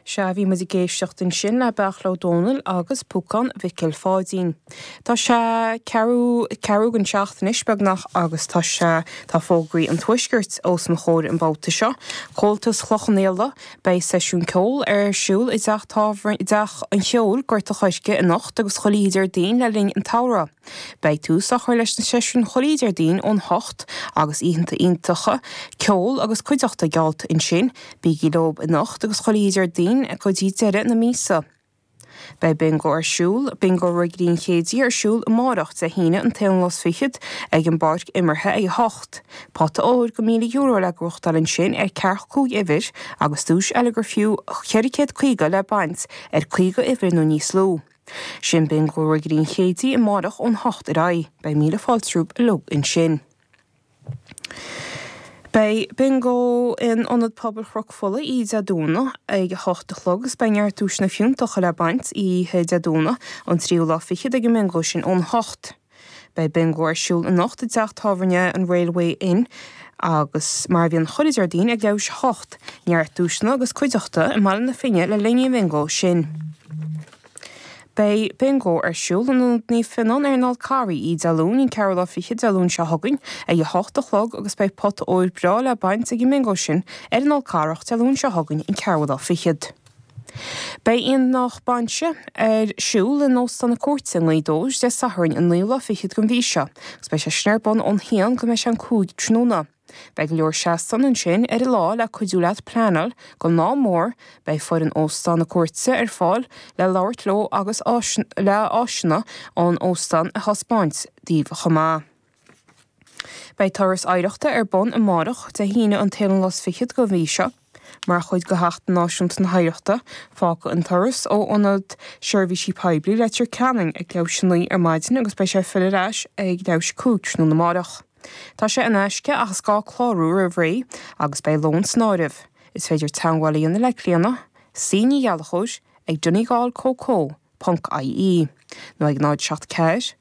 Sea, bhí muid ag éisteacht ansin le Beairtle Ó Domhnaill agus Púcán Mhicil Pháidín. Tá sé ceathrú chun seacht anois, beagnach, agus tá sé, tá fógraí an Tuaiscirt os mo chomhair an babhta seo. Comhaltas Chloich Cheann Fhaola, beidh seisiún ceoil ar siúl i dteach tábhairne, i dTeach an Cheoil, Gort a' Choirce anocht agus chuile Dhéardaoin le linn an tsamhraidh. Beidh tús á chur leis na seisiúin chuile Déardaoin ón hocht, agus oícheanta iontacha ceoil agus cuideachta geallta ansin. Bígí leob anocht agus chuile Dhéardaoin go dtí deireadh na míosa. Beidh Bingo ar siúl, Bingo Ghlinn Chéidigh ar siúl amárach, Dé hAoine, an t-aon lá 's fichead, ag an bpáirc imeartha ag a hocht. Pota óir go €1,000 le gnóthachtáil ansin ar ceathracha cúig uimhir, agus duais eile ar fiú €450 le baint, ar caoga uimhir nó níos lú. Sin Bingo Ghlinn Chéidigh amáireach ón hocht ar aghaidh. Beidh míle fáilte romhaibh uilig ansin. Beidh Bingo in Ionad Pobail Chnoc Fola oíche Dé Domhnaigh ag a hocht a chlog is beidh neart duaiseanna fiúntacha le baint oíche Dé Domhnaigh an tríú lá fichead ag an mbingo sin ón hocht Beidh bingo ar siúl anocht i dteach tábhairne an Railway Inn agus, mar a bhíonn chuile Déardaoin, ag leathuair théis a hocht neart duaiseanna agus cuideachta i mBaile na Finne le linn an bhingo sin. Beidh bingo ar siúl in Ionad Naomh Fionnán ar an Fhál Carrach Oíche Dé Luain, an 4ú lá fichead Dé Luain seo chugainn, ag a hocht a chlog agus beidh pota óir breá le baint ag an mbingo sin ar an Fhál Carrach Dé Luain seo chugainn, an 4ú lá fichead. Beidh Aonach Bainise ar siúl in Óstán na Cúirte i nGaoth Dobhair Dé Sathairn an naoú lá fichead den mhí seo agus beidh sé sin ar bun ón haon go mbeidh sé an cúig tráthnóna. Beidh go leor seastáin ansin ar an lá le cuidiú leat pleanáil don lá mór. Beidh foireann Óstán na Cúirte ar fáil le labhairt leo agus le áiseanna an óstáin a thaispeáint daoibh chomh maith. Beidh Turas Oidhreachta ar bun amárach, Dé hAoine an t-aon lá is fichead den mhí seo, mar chuid de Sheachtain Náisiúnta na hOidhreachta. Fágfaidh an turas ó Ionad Seirbhísí Poiblí Leitir Ceanainn ag leathuair théis a naoi ar maidin agus beidh sé ag filleadh ar ais ag leathuair théis a cúig tráthnóna amárach. Tá sé in aisce ach is gá clárú roimh ré agus beidh lón san áireamh. Is féidir teagmháil a dhéanamh le Clíona, cnighallachoir ag donegalcoco.ie nó ag 074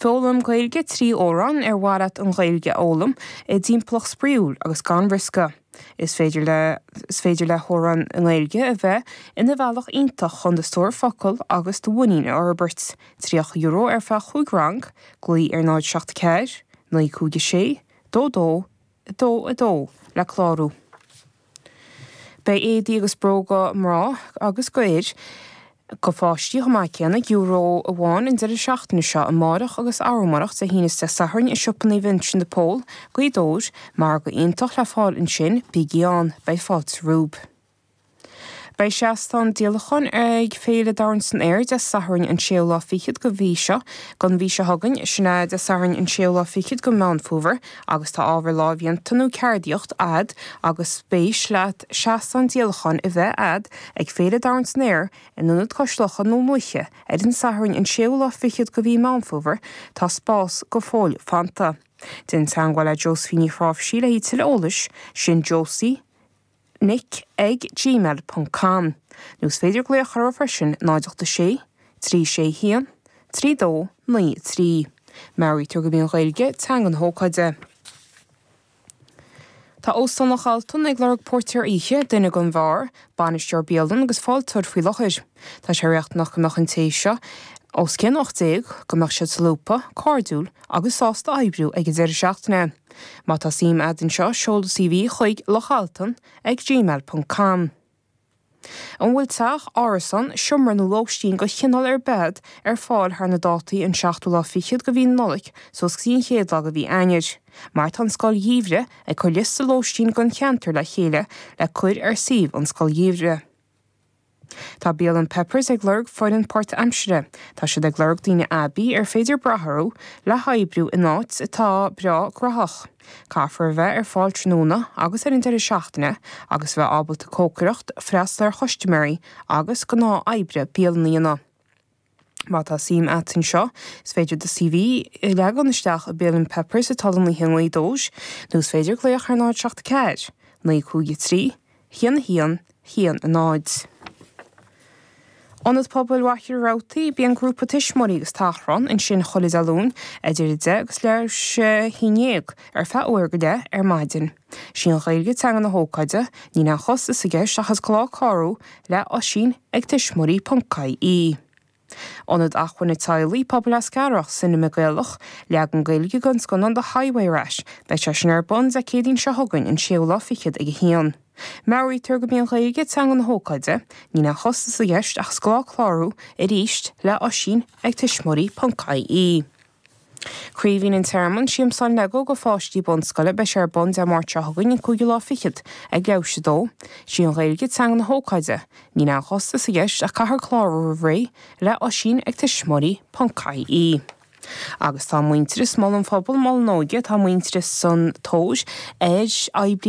Foghlaim Gaeilge trí Amhráin Ar mhaith leat an Ghaeilge a fhoghlaim i dtimpeallacht spraíúil agus gan riosca? Is féidir le Is féidir le hamhráin i nGaeilge a bheith ina bhealach iontach chun do stór focal agus do mhuinín a fhorbairt. €30 ar feadh 5 rang, glaoigh ar 074 956 22 2 2 le clárú. Beidh éadaí agus bróga mná agus d'fhir, do pháistí chomh maith céanna, Euro amháin an deireadh seachtaine seo, amárach agus arú amárach, Dé hAoine is Dé Sathairn, i Siopa Naomh Uinseann de Pól, Gaoth Dobhair. Margadh iontach le fáil ansin, bígí ann, beidh fáilte romhaibh. Beidh seastán díolacháin ag Féile Dorn san Aer Dé Sathairn an séú lá fichead de mhí seo, den mhí seo chugainn, sin ea Dé Sathairn an séú lá fichead de Meán Fómhair, agus tá ábhar lámhdhéanta nó ceardaíocht a'd agus spéis leat seastán díolacháin a bheith a'd ag Féile Dorn san Aer in Ionad Cois Locha Dún Lúiche ar an Satharn an séú lá fichead de mhí Meán Fómhair tá spás go fóill fanta. Déan teagmháil le Josephine Ní Chnáimhsí le tuilleadh eolais, sin Josie, nic ag gmail ponc com nó is féidir glaoch orthu freisin 086 361 3293. Meabhraítear gurb í an Ghaeilge teanga na hócáide. Tá Óstán Loch Altan ag lorg Póirtéir Oíche, duine don bheár, bainisteoir bialann agus fáilteoir faoi láthair. Tá sé riachtanach go mbeadh an té seo os cionn 18, go mbeadh siad solúbtha, cairdiúil agus sásta oibriú ag an deireadh seachtaine. Má tá suim agat anseo, seol do CV chuig, lochaltan ag gmail ponc com. An bhfuil teach, árasán, seomra nó lóistín de chineál ar bith ar fáil thar na dátaí an seachtú lá fichead de mhí na Nollaig suas go dtí an chéad lá de mhí Eanáir? Mar tá an Scoil Gheimhridh ag cur liosta lóistín don cheantar le chéile le cur ar suíomh an Scoil Gheimhridh. Tá bialann Peppers ag lorg foireann páirtaimsire. Tá siad ag lorg daoine aibí ar féidir brath orthu le hoibriú in áit atá breá gnaitheach. Caithfear a bheith ar fáil tráthnóna agus ar an deireadh seachtaine agus a bheith ábalta cócaireacht, freastal ar chustiméirí agus gnáth oibre bialann a dhéanamh. Má tá suim a't anseo, is féidir do CV a leagan isteach i mbialann Peppers atá don oíche 9 dóis, nó is féidir glaoch ar 074 953 11 10. Ionad Pobail Mhachaire Rabhartaigh Bíonn grúpa tuismitheoirí agus tachrán ansin chuile Dé Luain idir 10 agus leathuair tar éis 11 ar feadh uair go leith ar maidin. 'Sí an Ghaeilge teanga na hócáide, níl aon chostas i gceist ach is gá clárú le Oisín ag tuismitheoirí ponc ie. Ionad Acmhainne Teaghlaigh, Pobal Eascarrach, Cinema Gaelach, leagan Gaeilge den scannán The Highway Rat, beidh sé sin ar bun Dé Céadaoin seo chugainn an séú lá fichead ag a haon. Meabhraítear gurb í an Ghaeilge teanga na hócáide, níl aon chostas i gceist ach is gá clárú, arís le Oisín ag tuismitheoirí ponc ie. Craoibhín an Tearmainn, Siamsán Lego do pháistí bunscoile, beidh sé ar bun Dé Máirt seo chugainn, an cúigiú lá fichead, ag Laois 2. Is í an Ghaeilge teanga na hócáide. Níl aon chostas i gceist ach caithfear clárú roimh ré, le Oisín ag tuismitheoirí ponc ie Agus tá an muintearas, Mol an Phobail, Mol an Óige, tá an muintearas sa tóir ar oibrí